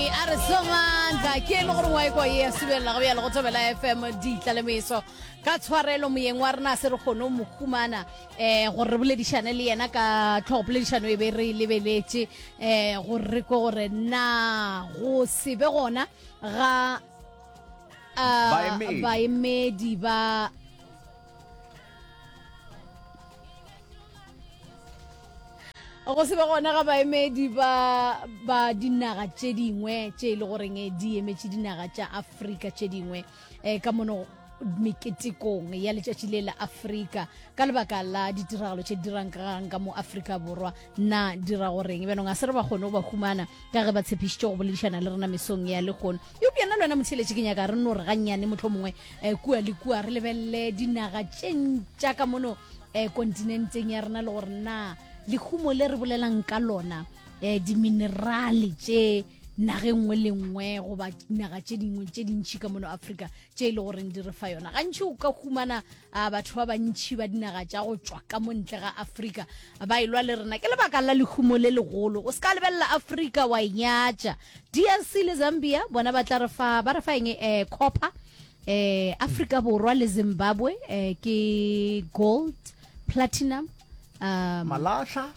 a re somantla ke e le gore wa ekwa e ya subelela go bjalo go tobela fm ditla le meso ka tshwarelo moyeng wa rena se re kgone o mokhumana um eh, gore re boledišane le yena ka tlhogopoledišano e be re lebeletše um gore re ko gore na go se be gona ga eh, baemedi ba go se be gona ga baemedi ba ba dinaga tše dingwe tše e le goreng eh, di emetše dinaga tša afrika tše dingwe um ka mono meketekong ya letšatši le la afrika ka lebaka la ditiragalo tše dirang kagang ka mo afrika borwa na dira goreng bjanong a se re ba kgone go ba humana ka ge ba tshepišitše go boledišana le rena mesong ya legono Eupša nna le wena motheeletši ke nyaka re nno re gannyane mohlomongwe um kua le kua re lebelele dinaga tše ntša ka mono um kontinenteng ya rena le gore na lehumo le re bolelang ka lona um diminerale tše nageng nngwe le nngwe goba naga tše dingwe tše dintšhi ka mono afrika tše e le goreng di re fa yona gantši o ka humana a batho ba bantšhi ba dinaga tša go tšwa ka montle ga afrika ba e lwa le rena ke lebaka la lehumo le legolo o se ka lebelela afrika wa e nyatša drc le zambia bona ba tla re fa ba re fa eng um copper um afrika borwa le zimbabwe um ke gold platinum um malahla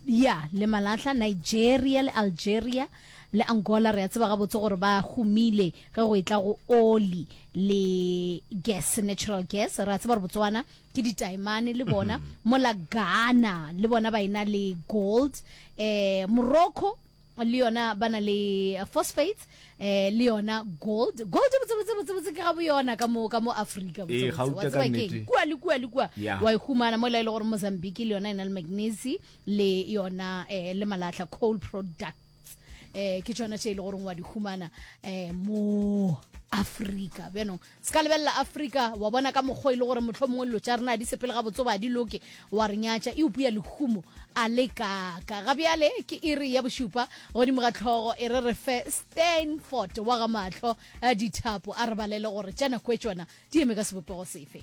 ya le malahla nigeria le algeria Le Angola re a tseba gabotse gore ba humile ge go etla go oli le gas, natural gas. Re a tseba gore Botswana ke ditaemane le bona. Mm -hmm. Mola Ghana le bona ba ena le gold. Eh, Morocco le yona ba na le phosphates eh le yona gold gold botse botse botse botse ke ga bo yona ka mo ka mo Africa botse eh, botse wa tseba ke kwa le kwa le kwa wa ihumana mo la ile e gore Mozambique le yona e na le magnesium le yona eh, le malahla coal products eh, ke tšona tše e le goreng wa di humana eh, mo afrika bjanong se ka lebelela afrika wa bona ka mokgwa e le gore motlho mongwe dilo tša rena di sepele ga botso ba di loke wa re nyatša e upuya lehumo a le kaka ga bjale ke iri ya bošupa godimo ga tlhogo e re re fe stanford wa ga matlho a dithapo a re balele gore tša nako e tšona di eme ka sebopego sefe